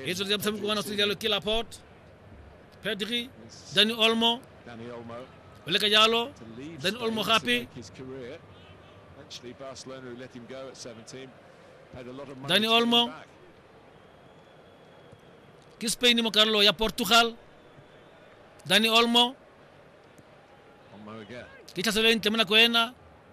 E tsweletse motshameko wa naso jalo ke laport pedri dani olmo o leka jalo dani olmo gape dani olmo ke spain mo karolo ya portugal dani olmo ke tlhaselelo e ntle mo nako ena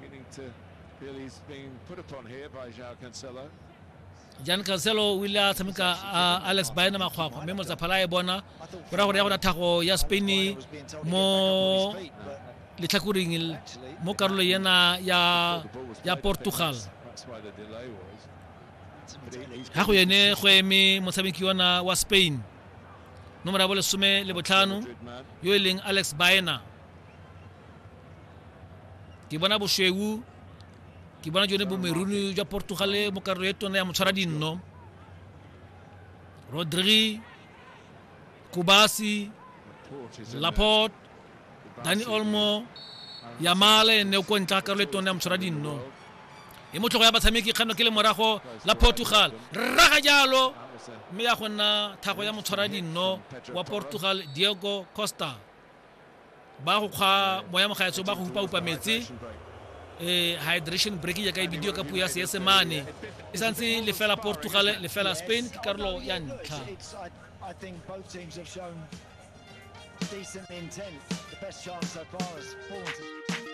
Meaning to feel he's being put upon here by João Cancelo. jan cancelo o ile a tshameka a alex baena makgwakgwa mme motsaphala e bona go ra gore ya gona thago ya spain mo letlhakoring mo karolo yena ya ya portugal ga go yene go eme motshameki yona wa spain nomoro ya bolesome le botlhano yo e leng alex baena ke bona bosweu ke bona jone bomeruni jwa portugale mo karolo e tona ya motshwara dinno rodri kubasi laport dani olmo yamale ne o ko ntla karolo e tona ya motshwara dinno e motlhogo ya batshameki kgano ke le morago la portugal rraga jalo mme ya go nna thago ya motshwara dinno wa portugal diego costa ba go kgwa moya mogaetso ba go hupa-hupa metse um hydration break jaaka e bidio ka puo ya seesemane e santse lefela portugal lefela spain ke karolo ya ntlha decent intent. The best chance so far is four.